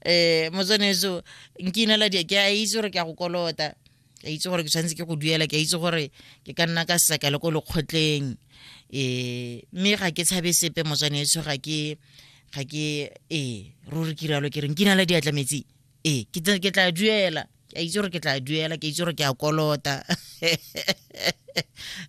eh motswaneso nkinela di ke a itse gore ke a go kolota ke a itse gore ke tshwanetse ke go duela ke a itse gore ke ka nna ka seka le ko lekgotleng eh mme ga ke tshabe sepe motswaneso ga ke ga ke eh ruri kiralo ke re nkinela diatla metsi ee ke tla ke tla duela ke a itse gore ke tla duela ke itse gore ke a kolota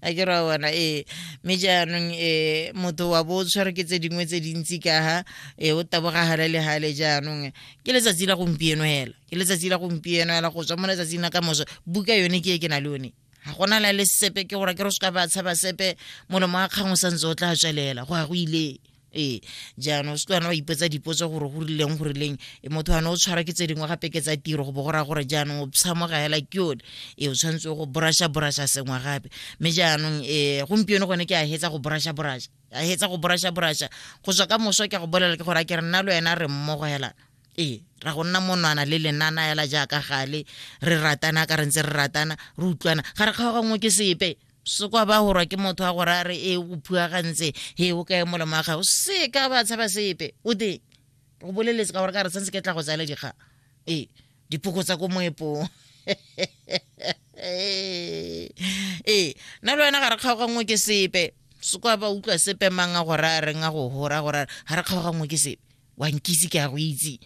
a ke ra bona ee mme jaanong um motho wa bo o tshwere ke tse dingwe tse dintsi ka ha e o tabogagale le gale jaanong ke letsatsi la gompieno fela ke letsatsi la gompieno fela go tswa mo letsatsing la ka moso buka yone ke e ke na le yone ga gona la le sepe ke gore ke re se ka ba tshaba sepe molomo wa kgang o santse o tla tswelela go ya go ile ee jaanong se tlwana wa ipetsa dipotso gore go rileng go rileng e motho ane o tshwara ke tse dingwe gape ke tsa tiro go bo go raya gore jaanong o tshamoga hela ke yone ee o tshwanetse go borasha borasha sengwe gape mme jaanong um gompieno gone ke a hetsa go borasha borasha a hetsa go borasha borasha go tswa ka moso ke go bolela ke gore a ke re nna le wena re mmogo helana ee ra go nna monwana le lenana ela jaaka gale re ratana ka re ntse re ratana re utlwana ga re kgaogangwe ke sepe se kwa ba gorwa ke motho wa gore a re e o phuagantse he o kae molemo wa gago se ka ba tshaba sepe o teng go boleletse ka gore ka re santse ke tla go tsaya le dikgang ee dipoko tsa ko moepong ee nna le wena ga re kgaogangwe ke sepe se kwa ba utlwa sepe mang a gore a reng a go gora gore ga re kgaogangwe ke sepe wa nkitse ke a go itse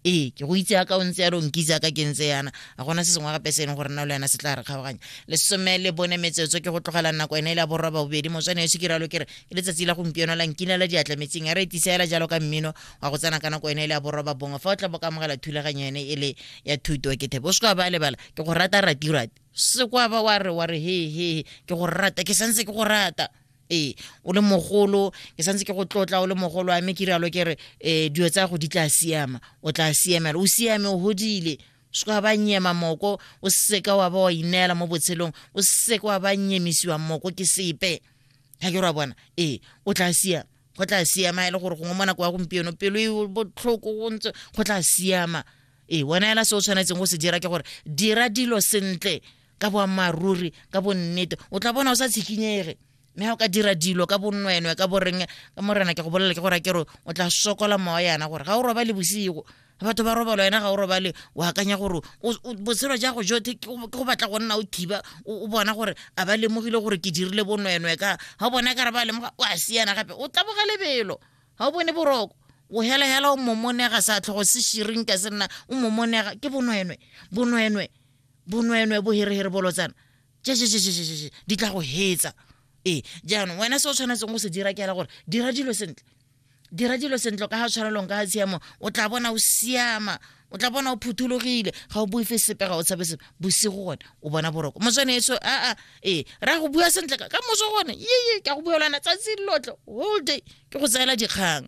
ee ke go itse yaka o ntse ya re o nkitse yaka ke ntse yana a gona se sengwe gape se e leng gore nna le yana se tla re kgaoganya lesome le bone metsotso ke go tlogela nako ene e le ya borwa ba bobedi motswane yo se ke ralo kere ke letsatsi la gompieno la nkina la diatla metseng a re etisa ela jalo ka mmino wa go tsena ka nako ene e le ya borwa ba bongwe fa o tla bo ka amogela thulaganyo ene e le ya thuto ke thebe o se ka ba lebala ke go rata ratirate se kwa ba wa re wa re he he ke go rata ke santse ke go rata ee o le mogolo ke santse ke go tlotla o le mogolo a mme ke rialo ke re um dilo tsa go di tla siama o tla siamela o siame o godile se ka ba nyema moko o seka wa ba wa ineela mo botshelong o seka wa ba nyemisiwa moko ke sepe ga ke ra bona ee o tla siama go tla siama e le gore gongwe mo nako ya gompieno pelo e botlhoko go ntse go tla siama ee wena ela se o tshwanetseng go se dira ke gore dira dilo sentle ka boammaaruri ka bonnete o tla bona o sa tshikinyege mme ga o ka dira dilo ka bonwenwe ka boreng ka morena ke go bolela ke gore ke re o tla sokola mowa yana gore ga o roba le bosigo batho ba robalo wena ga o robale o akanya gore botshelo ja go jote ke go batla go nna o thiba o bona gore a ba lemogile gore ke dirile bonwenwe ka ga o bona ka re ba lemoga o a siana gape o taboga lebelo ga o bone boroko o helehela o momonega sa tlhogo se shiring ka se nna o momonega ke bonwenwe bonwenwe bonweenwee boherehere bolotsana jejejejejee di tla go hetsa ee jaanong wena se o tshwanetseng go se dira ke ela gore dira dilo sentle dira dilo sentle ka ga tshwanelong ka ga tshiamo o tla bona o siama o tla bona o phuthologile ga o boife sepe ga o tshabe sepe bosigo gone o bona boroko motswane eso aa ee ra go bua sentle ka moso gone yeye ka go buelana tsatsi lotle whole day ke go tseela dikgang